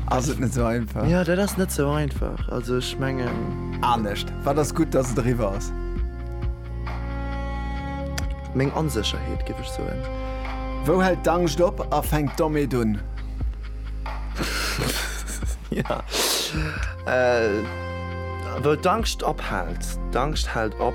Ass et net sou einfach? Ja, dat ass net sou einfach. Also ech mengen. Anescht. Wat ass gutt, datt et eriwwer ass? Meng Onsécherheet, géif ech soen. Wou hält d'Angscht op a fänkt d'Omeet un? Ja. Wou d'Angscht ophält? D'Angscht hält op.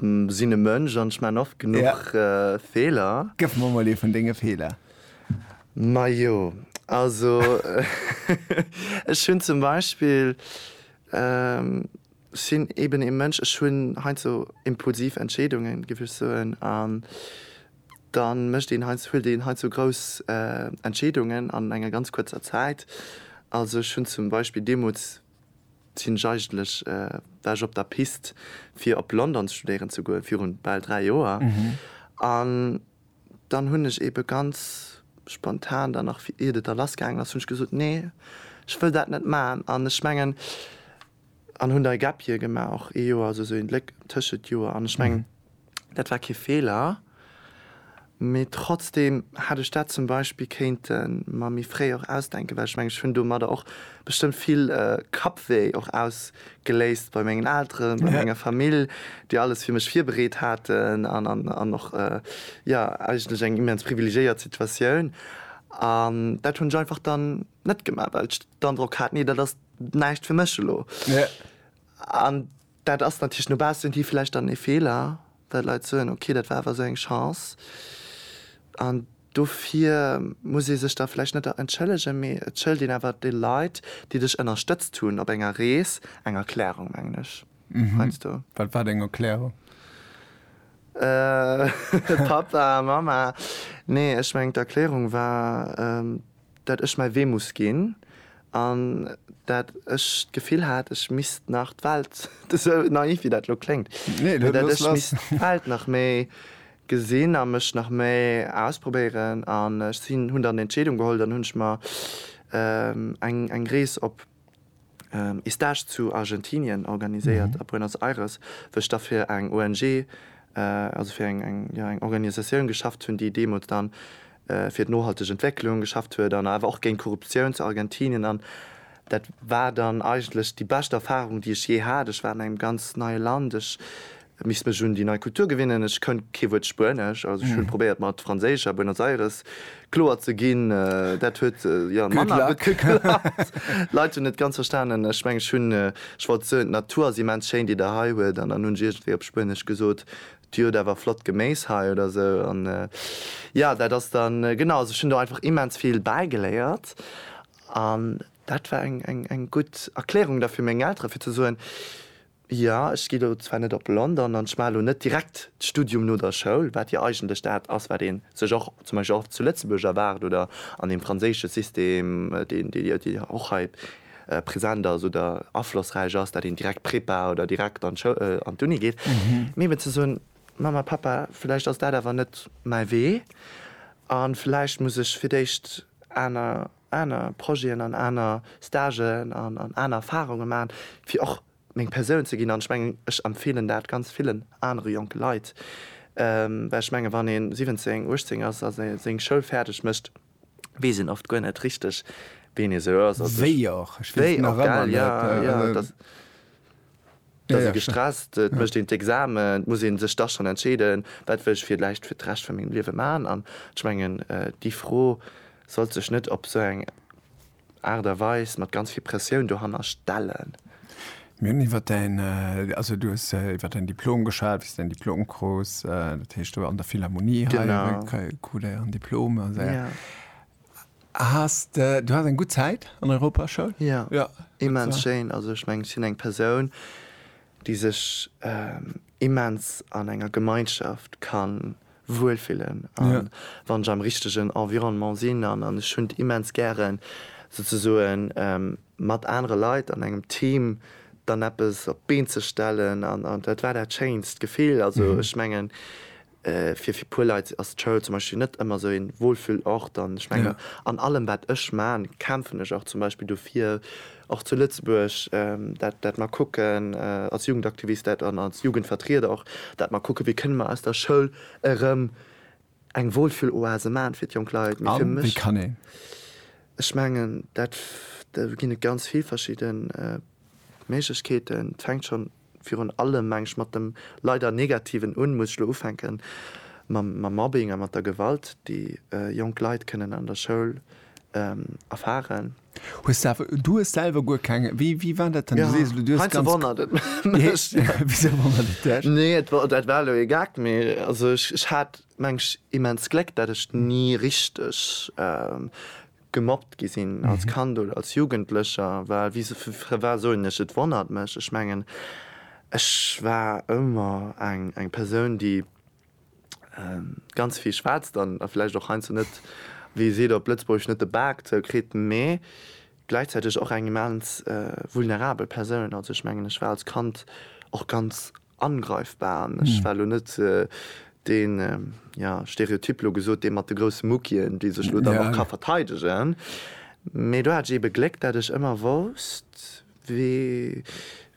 Sinn e Mënsch an ech maan oft genuch Feeler. Gëff mer mol ee vun denge Feeler. Majo, also ech hunn zum Beispill, ech sinn eben ee Mënsch, ech hunn heiansdo impulsiv Entscheedungen, géif ech soen, an da mécht een heiansdo, huelt een heiansdo grouss Entscheedungen an enger ganz kuerzer Zäit. Also ech hunn zum Beispill deemools, Sinn ech eigentlech war ech op der Pist fir op London studéieren ze goen virun bal 3 Joer an dann hunn ech eben ganz spontan dann nach iert et a lass gaangen ass hunn ech gesot nee ech wëll dat net maan an ech mengen an hunn da e Gap Year gemaach och ee Joer also sou een Léck tëschent Joer an ech mengen Dat war kee Feeler, mee trotzdeem hätt ech dat zum Beispill kéinte mer méi fréi och ausdenken, well ech mengen, ech hunn domadder och bestëmmt vill Kappwéi och ausgeléist bei mengen Elteren, bei menger Famill, déi alles fir mech virbereet haten an och, jo, eigentlech eng immens privilegiéiert Situatioun. An dat hunn ech einfach dann net gemaach, well ech den Androck hat, Nee, dat ass näischt fir mech elo. An Dat ass natierlech no baussen hin vläicht dann ee Feeler, well d'Leit soen, ok, dat war awer esou eng Chance. An dofir muss ee sech da vläicht net entschëllegen, mee et schëlt een awer de Leit, déi dech ënnerstëtzt hunn op enger Rees, eng Erklärung, mengen ech heiansdo. Wat war deng Erklärung? Pappa, Mamma, nee, ech mengen d'Erklärung war, dat ech mäi Wee muss ginn an dat ech d'Gefill hat, ech misst nach d'Welt, esou naiv wéi dat elo kléngt, mee dat ech misst d'Welt nach méi gesinn a mech nach méi ausprobéieren. An ech sinn, hunn dann d'Entscheedung geholl, dann hunn ech mer eng Rees op. Stage zu Argentinien organiséiert a Buenos Aires, wou ech da fir eng ONG, also fir eng Organisatioun geschafft hunn, déi deemools dann fir d'nohalteg Entwécklung geschafft huet an awer och géint Korruptioun zu Argentinien. An dat war dann eigentlech déi bescht Erfarung, déi ech jee hat. Ech war an engem ganz neie Land, ech Et misst mech un déi nei Kultur gewinnen. Ech kënnt kee Wuert Spuenesch, also ech hunn probéiert mat Franséisch a Buenos Aires kloer ze ginn. Dat huet jo manner gutt geklappt. D'Leit hunn net ganz verstanen. Ech mengen ech hunn, ech wollt soen, d'Natur ass immens schéin déi der hei huet an dann hunn ech iergendwéi op Spuenesch gesot, dir hutt awer flott Geméis hei oder sou an jo dat ass dann genau. Also ech hunn do einfach immens vill bäigeléiert an dat war eng gutt Erklärung da fir meng Elteren fir ze soen, Jo, ech gi lo zwar net op London an ech maache lo net direkt d'Studium no der Schoul, wat jo eigentlech dat ass, wat ee sech och zum Beispill och zu Lëtzebuerg erwaart oder an deem franséische System, deen jo och hei present ass oder aflossräich ass, dat een direkt Prepa oder direkt an d'Uni geet. Mee eben ze soen, Mamma, Pappa, vläicht ass dat awer net mäi Wee a vläicht muss ech fir d'éischt aner. aner Projeten an aner Stagen an an aner Erfahrungen maachen, fir och meng Persoun ze ginn. An ech mengen, ech empfeelen dat ganz villen anere jonke Leit, well ech mengen, wann ee 17, 18 ass a seng Schoul fäerdeg mécht, weess een oft guer net richteg, wien ee sou ass. Wéi och, ech weess et nach ëmmer net. Et ass ee gestresst, et mécht een d'Examen, et muss ee sech da schonn entscheeden, wat wëll ech villäicht fir d'Recht vu mengem Liewe maachen. An ech mengen, déi Fro sollt sech net op esou eng Aart a Weis mat ganz vill Pressioun dohanner stellen. Mir hunn iwwer däin, also du hues iwwer däin Diplom geschwat, wéi s de däin Diplom krus, dat heescht, du an der Philharmonie hei, krut e en Diplom. Has de, du has eng gutt Zäit an Europa Schoul? Jo, immens schéin. Also ech mengen ech sinn eng Persoun déi sech immens an enger Gemeinschaft ka wuel fillen an wann ech am richtegen Environnement sinn an an ech hunn et immens gären souzesoen mat anere Leit an engem Team dann eppes op d'Been ze stellen an dat war dat schéinst Gefill. Also ech mengen. Fir fir puer Leit ass d'Schoul zum Beispill net ëmmer esou een Wohlfühlort an ech mengen an allem wat ech man kämpfen ech och zum Beispill dofir och zu Lëtzebuerg dat dat mer kucken als Jugendaktivist dat an als Jugendvertrieder och dat mer kucke wéi kënne mer aus der Schoul erëm eng Wohlfühloase man fir d'jonk Leit. Mee fir mech ech mengen dat do ginn et ganz vill verschidden Méiglechkeeten et fänkt schonn virun allem, mengen ech, mat dem leider Negativen un, muss ech elo ufänken mam Mobbing a mat der Gewalt, déi jonk Leit kënnen an der Schoul erfaren. Hues de awer, du hues selwer guer keng, wéi, wéi war dat dann? Du sees elo, du hues ganz. Heinze wonnert et mech. Wisou wonnert et dech? Nee, et war, dat war elo ee Gag, mee also ech hat, mengen ech, immens Gléck, datt ech ni richteg gemobbt gi sinn als Kand oder als Jugendlecher, well wie se fir fir war soen ech, et wonnert mech. Ech mengen, ech war ëmmer eng eng Persoun, déi ganz vill schwätzt an a vläicht och heiansdo net, wéi ee seet op Lëtzebuergesch, net de Bak zou kritt, mee gläichzäiteg och eng immens vulnerabel Persoun. Also ech mengen, ech war als Kand och ganz angreifbar an ech war elo net deen, jo, Stereotyp elo gesot, dee mat de grousse Muckien, déi sech elo dann och ka verteidegen. Mee do hat ech eebe Gléck, dat ech ëmmer wousst, wéi,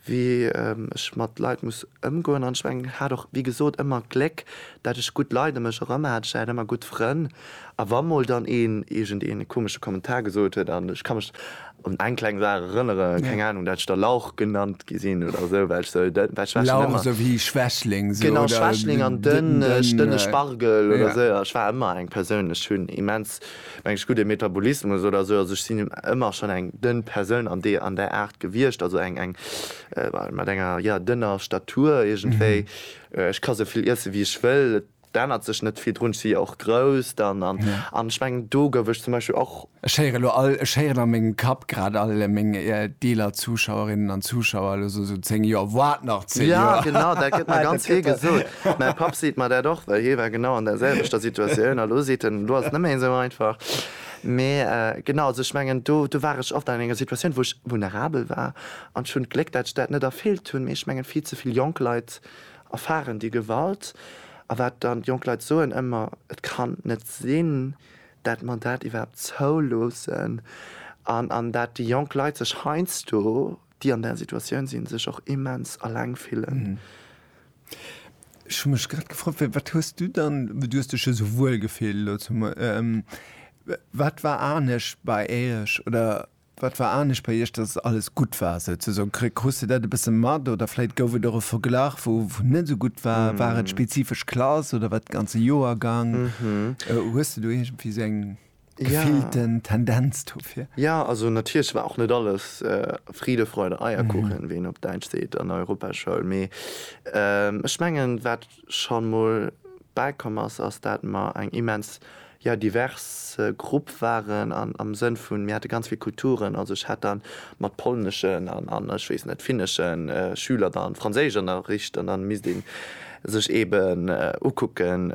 wéi ech mat Leit muss ëmgoen an ech mengen hat och, wéi gesot, ëmmer Gléck, dat ech gutt Leit ëm mech erëm hat. Ech hat ëmmer gutt Frënn. A wa mol dann een iergend een komesche Kommentar gesot huet, an ech ka mech un eng kleng Saach erënnere, keng Anung, dat ech da Lauch genannt gi sinn oder esou, well ech esou dënn, well ech war schonn Lauch, ëmmer, esou wéi Schwächling, esou, genau, oder Schwächling an dënn, dënneg, dënne dënn, Spargel oder ja. esou, ech war ëmmer eng Persoun, ech hunn immens, meng ech, gudde Metabolismus oder esou, also ech sinn ëmmer schonn eng dënn Persoun an deer, an där Aart gewiescht, also eng, eng, mat enger, jo, dënner Statur iergendwéi, ech ka esou vill iesse wéi ech wëll, et. D'ännert sech net vill drun, ech si jo och grouss dann an an ech mengen do gouf ech zum Beispill och. Ech héieren elo all, ech héieren a mengem Kapp grad all meng eeler Zuschauerinnen an Zuschauer elo so, so 10 Joer, wat nach 10 Joer? Ja genau, dat gëtt mer ganz vill gesot. Mäi Papp seet mer dat och, well hie war genau an der selwechter Situatioun a lo seet en, elo ass et net méi esou einfach. Mee genau, also ech mengen do do war ech oft an enger Situatioun, wou ech vulnerabel war an ech hunn d'Gléck, dat ech dat net erfüllt hunn, mee ech mengen vill ze vill jonk Leit Erfaren déi Gewalt? A wat dann, d'Jonk Leit soen ëmmer, Et kann net sinn, dat mer dat iwwerhaapt zouloossen. An an dat déi jonk Leit sech heiansdo, déi an där Situatioun sinn, sech och immens eleng fillen. Ech hu mech grad gefrot, Wéi, wat hues du dann, du hues dech jo esou wuel gefillt elo zum, wat war anescht bei Iech oder? Wat war anescht bei iech, dass et alles gutt war souzesoen? Kri-, krus de dat e bësse mat oder vläit gouf et och e Verglach wou net esou gutt war? War et spezifesch Klass oder war et de ganze Joergang? Hues de do iergendwéi esou eng gefillten Tendenz dofir? Jo, also natierlech war och net alles Friede, Freude, Eierkuchen, wéi een op Däitsch seet, an der Europaschoul, mee ech mengen wat, schonn mol bäikomm ass, ass dat mer eng immens, jo, divers Grupp waren an am Sënn vun, mir hate ganz vill Kulturen. Also ech hat dann mat polneschen an, an ech weess net, finneschen Schüler dann Franséischënnerricht an dann misst ee sech eeben ukucken,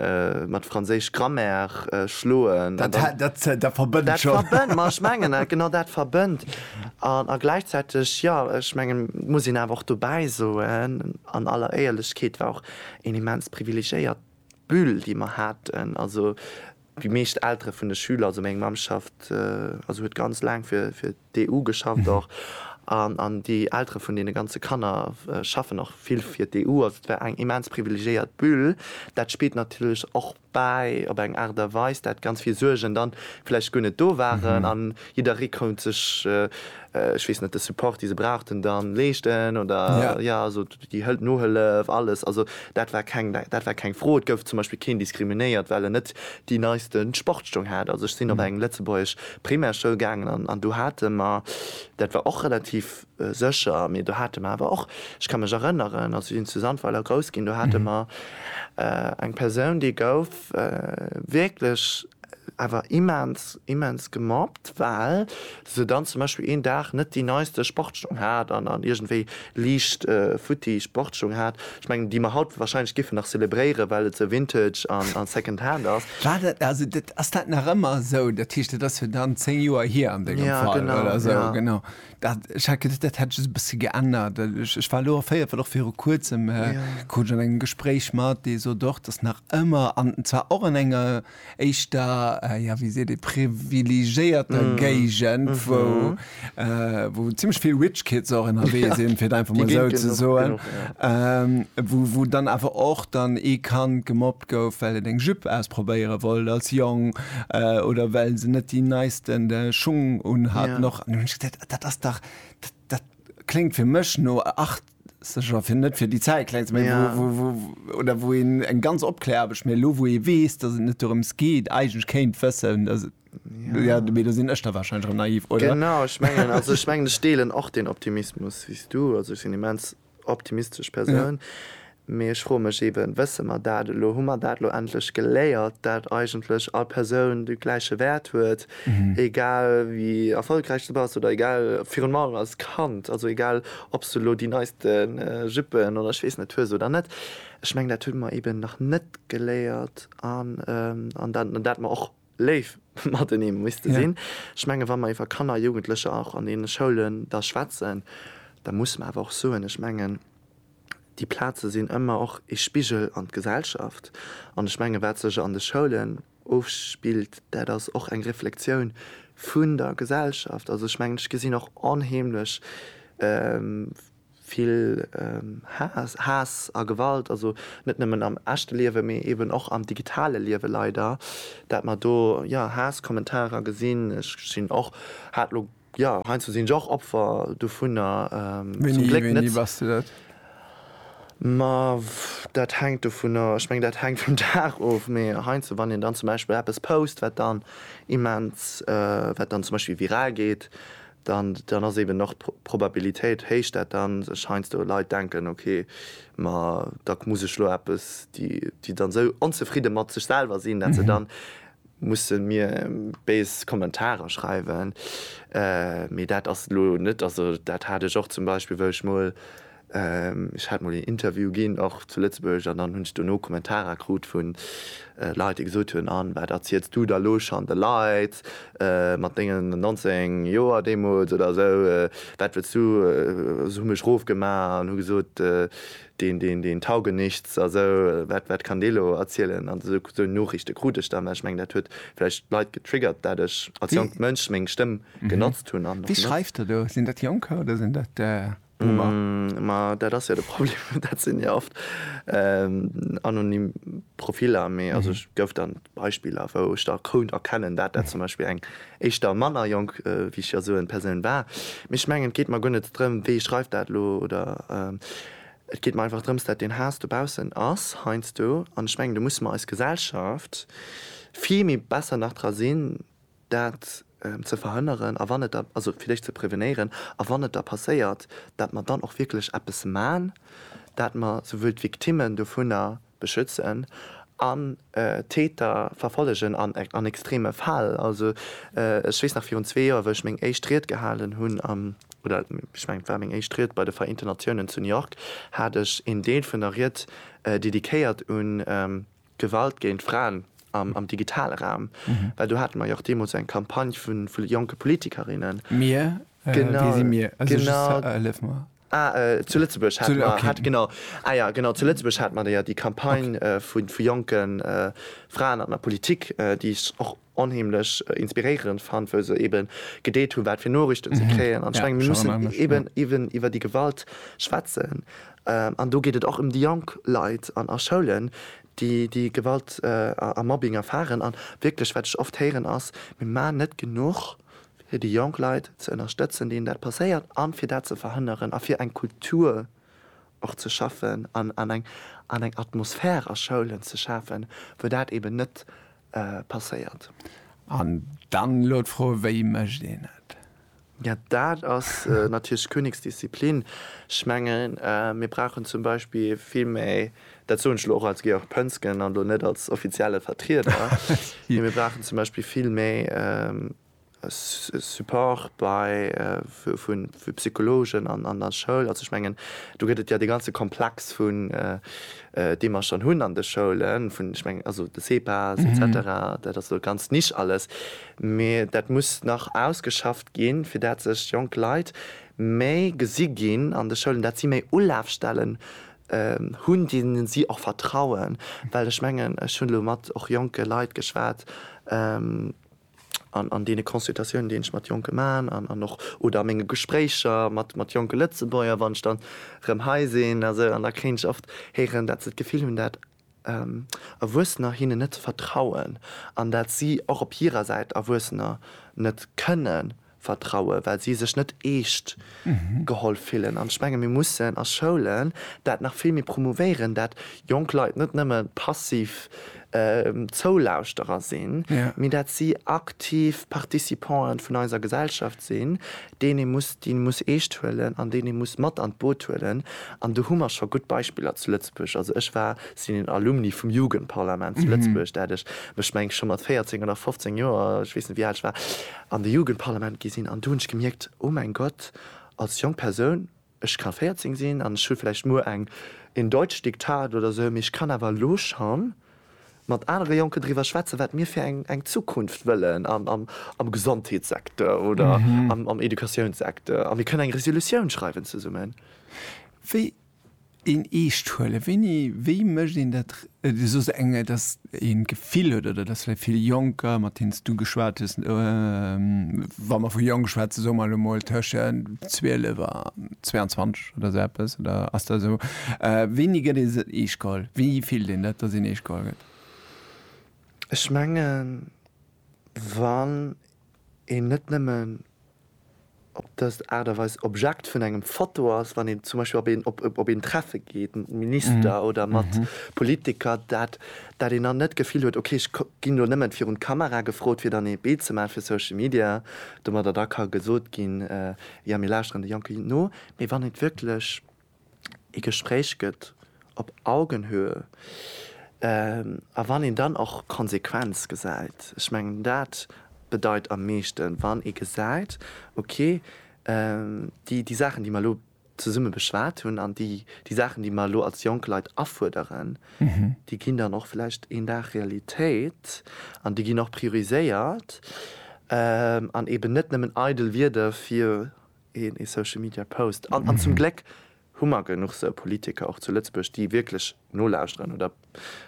mat Franséisch Grammaire schloen. Dat, dat, dat verbënnt schonn. Dat verbënnt, ma ech mengen, genau dat verbënnt. A gläichzäiteg, jo, ech mengen, muss een awer och dobäi soen, An aller Éierlechkeet, war och een immens privilegéiert Bulle, déi mer haten. Also déi meescht Eltere vun de Schüler, also meng Mamm schafft, also huet ganz laang fir d'EU geschafft och, an déi Eltere vun deene ganze Kanner schaffen och vill fir d'EU. Also et war eng immens privilegéiert Bulle. Dat spillt natierlech och bäi, op eng Aart a Weis, dat ganz vill Suergen dann vläicht guer net do waren an jidderee konnt sech, ech weess net, de Support, dee se brauchten, dann leeschten oder, jo, also déi Nohëllef, alles, also dat war keng, dat war keng Fro. Et gouf zum Beispill keen diskriminéiert, well en net déi neiste Sportstong hat. Also ech sinn op eng lëtzebuergesch Primärschoul gaangen an do hate mer, dat war och relativ, Sécher, mee do hate mer awer och, ech ka mech erënneren, also sinn zu Sandweiler grouss ginn, do hate mer eng Persoun, déi gouf wierklech awer immens, immens gemobbt, well se dann zum Beispill een Dag net déi neiste Sportsstung hat an dann iergendwéi liicht futti Sportsstung hat. Ech mengen, déi mer haut warscheinlech giffen nach zelebréieren, well et esou vintage an second hand ass. War dat, also ass dat nach ëmmer esou? Dat heescht, dat ass jo dann zéng Joer hier an dengem Fall oder esou. Genau, Dat, ech hat geduet, dat hätt ech e bësse geännert. Ech, ech war elo erféiert, well och viru Kuerzem ja. krut ech an engem Gespréich mat, dee sot och, datt nach ëmmer, an zwar och an enger éischter, ja wéi seet ee, privilegéierter mm. Géigend, mm -hmm. wou, äh, wou zimmlech vill Rich Kids och ënnerwee ja. sinn, fir et einfach mal esou ze soen, ja. ähm, wou, wou dann awer och dann ee Kand gemobbt gestoppt gouf, well et eng Jupe ausprobéiere wollt als Jong oder well se net déi neisten Schung unhaten. Och an hunn ech geduet, dat ass dach, dat kléngt fir mech no Achtzeger, fir net fir déi Zäit kleng ze maachen, wou, wou, wou oder wou een eng ganz Opkläraarbecht, mee elo wou ee weess, datt et net dorëms geet, eigentlech kéint wëssen, datt et, jo, mee do sinn ech da warscheinlech erëm naiv, oder? Genau, ech mengen, also ech mengen, ech deelen och deen Optimismus wéi s du. Also ech sinn immens optimistesch Persoun, mee ech froe mech eeben, wësse mer dat elo, hu mer dat elo endlech geléiert, dat eigentlech all Persoun de gläiche Wäert huet, egal wéi erfolgräich s de bass oder egal, virun allem als Kand, also egal ob s de elo déi neiste Juppen oder ech weess net hues oder net. Ech mengen dat hu mer eeben nach net geléiert an dat mer och Léif matenee muss de sinn. Ech menge wa mer iwwer Kanner a Jugendlecher och an deene Schoulen da schwätzen, da muss mer awer och soen, ech mengen déi Plaze sinn ëmmer och ee Spigel an d'Gesellschaft. An ech menge wat sech an de Schoulen ofspillt, dat ass och eng Reflexioun vun der Gesellschaft. Also ech mengen ech gesinn och onheemlech vill Haass, Haass a Gewalt, also net nëmmen am echte Liewen, mee eben och am digitale Liewen leider, dat mer do jo Haasskommentarer gesinn. Ech sinn och, hat elo, jo heiansdo sinn ech och Opfer dovunner, zum Gléck net. Wéini bass de dat? Ma dat hänkt dovunner, ech mengen dat hänkt vum Dag of, mee heiansdo wann een dann zum Beispill eppes post wat dann immens, wat dann zum Beispill viral geet, dann ass eben och d'Probabilitéit héich, dat dann sech heiansdo Leit denken, ok, ma da muss ech lo eppes, déi dann esou onzefridde mat sech selwer sinn, dat se dann musse mir béis Kommentarer schreiwen. Mee dat ass lo net, also dat hat ech och zum Beispill, wou ech mol, Ech hat mol een Interview ginn, och zu Lëtzebuerg, an dann hunn ech dono Kommentarer krut vu Leit, déi gesot hunn, An wat erziels du da lo schonn de Leit mat dengen 19 Joer deemools oder esou? Wat wëlls du? Hu mech rofgemaach an hu gesot, deen, deen, deen tauge nichts a sou. Wat, wat kann dee lo erzielen? An esou, esou Nooriichte krut ech dann. Mä ech mengen, dat huet vläicht d'Leit getriggert, dat ech als jonkt Mënsch meng Stëmm genotzt hunn an och benotze. Wie schreift da do? Sinn dat Jonker oder sinn dat. Boomer. Ma dat ass jo de Problem, dat sinn jo oft anonym Profiller. Mee also ech gouf dann Beispiller, wou ech da kount erkennen, dat dat zum Beispill eng éischter manner jonk, wéi ech jo soen, Persoun war. Mee ech mengen, et geet mer guer net drëm, wee schreift dat elo, oder et geet mer einfach drëms, dat deen Haass dobaussen ass heiansdo. An ech mengen, do musse mer eis Gesellschaft vill méi besser nach dra sinn, dat ze verhënneren a wann et da, also fir déch ze prevenéieren, a wann et da passéiert, dat mer dann och wierklech eppes man, dat mer souwuel d'Victimmen dovunner beschützen an d'Täter verfollegen an extreme Fäll. Also ech weess nach virun zwee Joer, wou ech meng éischt Ried gehalen hunn am, oder ech mengen et war meng éischt Ried bei de Vereenten Natiounen zu New York, hat ech een Deel vun der Ried dediquéiert un, Gewalt géint Fraen am digitale Raum, well do hate mer jo och deemools eng Campagne vu jonke Politikerinnen. Mir? Wie si mir? Hëllef mer. Ah, zu Lëtzebuerg hate mer. Ah okay. Genau. Ah jo, genau, zu Lëtzebuerg hate mer déi Campagne vu jonke Fraen an der Politik, déi ech och onheemlech inspiréierend fannt, wou se eben gedeelt hunn, wat fir Noriichten se kréien. An ech mengen, mir mussen eben, eben iwwer déi Gewalt schwätzen. An do geet et och ëm déi jonk Leit an a Schoulen, déi déi Gewalt a Mobbing erfaren. An wierklech, wat ech oft héieren, ass, Mir maachen net genuch, fir déi jonk Leit ze ënnerstëtzen, deenen dat passéiert, a fir dat ze verhënneren a fir eng Kultur och ze schaffen an eng Atmosphär a Schoulen ze schafen, wou dat eben net passéiert. An dann elo d'Fro, wéi mécht een et? Jo, dat ass natierlech d'Königsdisziplin. Ech mengen, mir brauchen zum Beispill vill méi, dat soen ech elo och als Georg Pönsgen an elo net als offizielle Vertrieder, mee mir brauchen zum Beispill vill méi Support bei vu Psychologen an der Schoul. Also ech mengen, do gëtt et jo dee ganze Komplex vun, dee mer schonn hunn an de Schoulen, vun, ech mengen, also de CEPAS et cetera, dat ass elo ganz niche alles, mee dat muss nach ausgeschafft ginn, fir dat sech jonk Leit méi gesi ginn an de Schoulen, dat si méi Ulafstellen hunn, deene si och vertrauen. Well ech mengen, ech hunn elo mat och jonke Leit geschwat, an deene Consultatiounen, déi ech mat Jonke maachen an och oder a menge Gespréicher mat jonke Lëtzebuerger, wann ech dann erëm hei sinn a sou, an da kréien ech oft héieren, dat se d'Gefill hunn, dat Erwuessener hinnen net vertrauen an dat si och op hirer Säit Erwuessener net kënnen Vertrauen, well si sech net eescht geholl fillen. An ech menge mir mussen a Schoulen dat nach vill méi promouvéieren, dat jonk Leit net nëmme passiv Zoulauschterer sinn, mee dat si aktiv Participanten vun eiser Gesellschaft sinn, deen ee muss déi muss eescht huelen an deen ee muss mat an d'Boot huelen. An do hu mer scho gutt Beispiller zu Lëtzebuerg. Also ech war, sinn een Alumni vum Jugendparlament zu Lëtzebuerg, dat ech mech meng scho mat 14 oder 15 Joer, ech weess net wéi al ech war, an de Jugendparlament gi sinn an do hunn ech gemierkt, oh mäin Gott, als jonk Persoun, ech ka 14 sinn an ech hu vläicht muer eng in Deutsch Diktat oder esou, mee ech kann awer elo scho mat anere Jonken driwwer schwätzen, wat mir fir eng Zukunft wëllen am Gesondheetssecteur oder am Educatiounssekteur a mir kënnen eng Resolutioun schreiwen zesummen. Een eescht huelen, wéini, wéi mécht een dat? Du soos eng, dass een d'Gefill huet, oder dass vläicht vill Jonker, mat deenen s du geschwat hues, wa mer vu jonk schwätzen, soe mer elo mol tëschent 12 a 22 oder esou eppes, oder ass dat esou, wéini gëtt ee se eescht geholl? Wéi fillt een dat, dass een eescht geholl gëtt? Ech mengen, wann een net nëmmen op dës Aart a Weis Objekt vun engem Foto ass, wann een zum Beispill op een Treffe geet mat Minister oder mat Politiker, dat dat een dann net d'Gefill huet, ok ech ginn do nëmmen virun d'Kamera gefrot, fir dann ee Bild ze maachen fir Social Media, domadder da ka gesot ginn, jo mir lauschteren de Jonke no, mee wann et wierklech. ee Gespréich gëtt op Augenhöhe a wann een dann och Konsequenz gesäit, ech mengen dat bedeit am meeschten, wann ee gesäit, okay, déi Saachen, déi mer elo zesumme beschwat hunn an déi Saachen, déi mer elo als jonk Leit afuerderen, déi ginn dann och vläicht een Dag Realitéit an déi ginn och prioriséiert an eeben net nëmmen eidel Wierder fir een ee Social Media Post an an zum Gléck hu mer genuch sou Politiker och zu Lëtzebuerg déi wierklech nolauschteren oder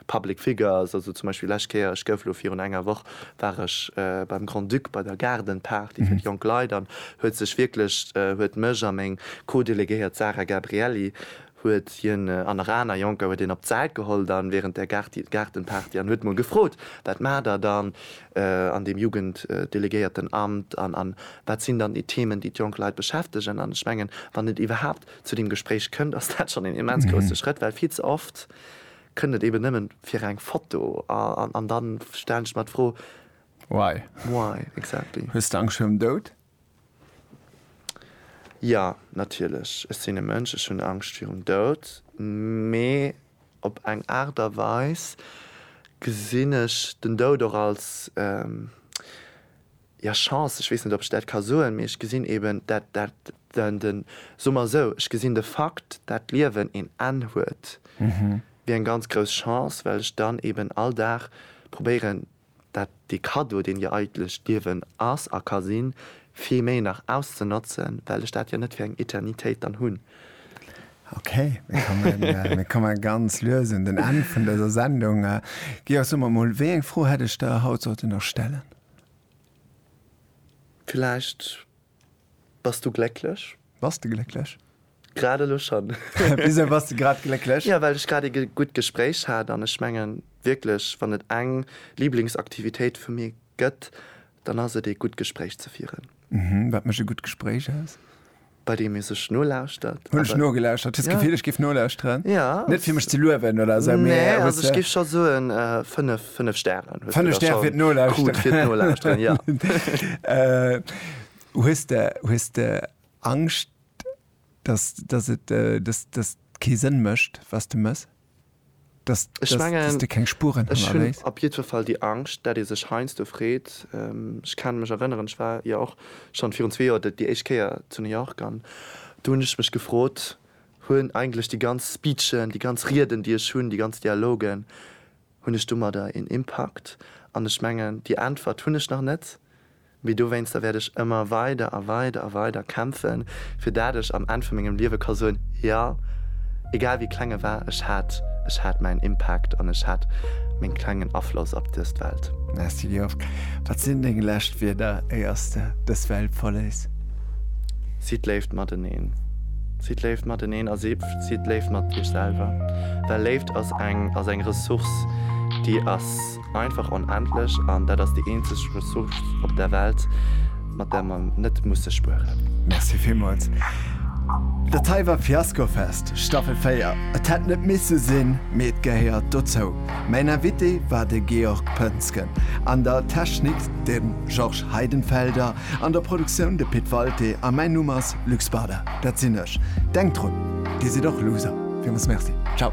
Public Figures, also zum Beispill lescht Kéier, ech gouf elo virun enger Woch war ech beim Grand-Duc bei der Garden Party fir d'jonk Leit an huet sech wierklech huet mech a meng Co-Delegéiert Sarah Gabrielli huet hien an nach aner Jonker huet hien op d'Säit geholl dann während der Gaartenparty an huet mol gefrot, Wat maacht der dann an deem Jugenddelegéiertenamt an wat sinn dann déi Themen, déi d'jonk Leit beschäftegen? An ech mengen, wann et iwwerhaapt zu deem Gespréich kënnt, ass dat schonn een immens grousse Schrëtt, well vill ze oft kënnt et eben nëmmen fir eng Foto an dann stellen ech mer d'Fro, Why? Why exactly? Hues de Angscht virum Doud? Jo, natierlech, ech sinn e Mënsch, ech hunn Angscht virum Doud, mee op eng Aart a Weis gesinn ech den Doud och als, ja, Chance, ech weess net, ob ech dat ka soen, mee ech gesinn eeben dat, dat, den, soe mer esou, ech gesinn de Fakt, dat d'Liewen een Enn huet, wéi eng ganz grouss Chance, well ech dann eeben all Dag probéieren, dat dee Cadeau, deen jo eigentlech d'Liewen ass a ka sinn, vill méi nach auszenotzen, well ech dat jo net fir eng Eternitéit dann hunn. Okay, mir komme ganz lues un den Enn vun dëser Sendung. Georg, so mer emol, wéi eng Fro hätt ech der haut sollte nach stellen? Villäicht. Bass du glécklech? Bass de glécklech? Grad elo schonn. Wisou bass de grad glécklech? Jo, well ech grad ee gutt Gespréich hat an ech mengen wierklech, wann et eng Liblingsaktivitéit vu mir gëtt, dann ass et ee gutt Gespréich ze fieren. Mhm, wat mécht e gutt Gespréich aus? Bei deem ee sech nolauschtert. Hunn ech nogelauschtert. Hues d'Gefill, ech géif nolauscheren? Ja. Net fir mech ze luewen oder esou, mee. Nee, also ech géif scho soen, fënnef 5 Stären hues du da schon krut fir d'Nolauschteren, jo. Hues de, hues de Angscht, dass, dass et, dass, dass et kee Sënn mécht, wat s de méchs? Dass, dass, dass de keng Spuren hannerléis? Ech hunn op jiddwer Fall déi Angscht, dat ee sech heiansdo freet. Ech ka mech erënneren, ech war jo och schonn virun zwee Joer déi éischt Kéier zu New York an do hunn ech mech gefrot, hunn eigentlech déi ganz Speechen, déi ganz Rieden, déi ech hunn, déi ganz Dialogen, Hunn ech domadder een Impakt? An ech mengen, déi Äntwert hunn ech nach net, mee dowéinster wäert ech ëmmer weider a weider a weider kämpfen, fir dat ech am Enn vu mengem Liewe ka soen, Jo, egal wéi kleng e war, ech hat, ech hat mäin Impakt an ech hat meng klengen Afloss op dëst Welt. Merci Georges. Wat sinn deng lescht Wierder éier s de dës Welt verléiss? Sidd léif mateneen. Sidd léif mateneen a si. Sidd léif mat iech selwer, well Léift ass eng ass eng Ressource, déi ass einfach onendlech an dat ass déi eenzeg Ressource op der Welt, mat där mer net musse spueren. Merci villmools. Dat hei war Fiascofest, Staffel 4. Et hätt net misse sinn, mee et gehéiert dozou. Mäin Invité war de Georg Poensgen, an der Technik de Georges Heidenfelder An der Produktioun de Pit Walté a mäin Numm ass Luc Spada, dat sinn ech. Denkt drun, Dir sidd och Loser fir ons. Merci, ciao.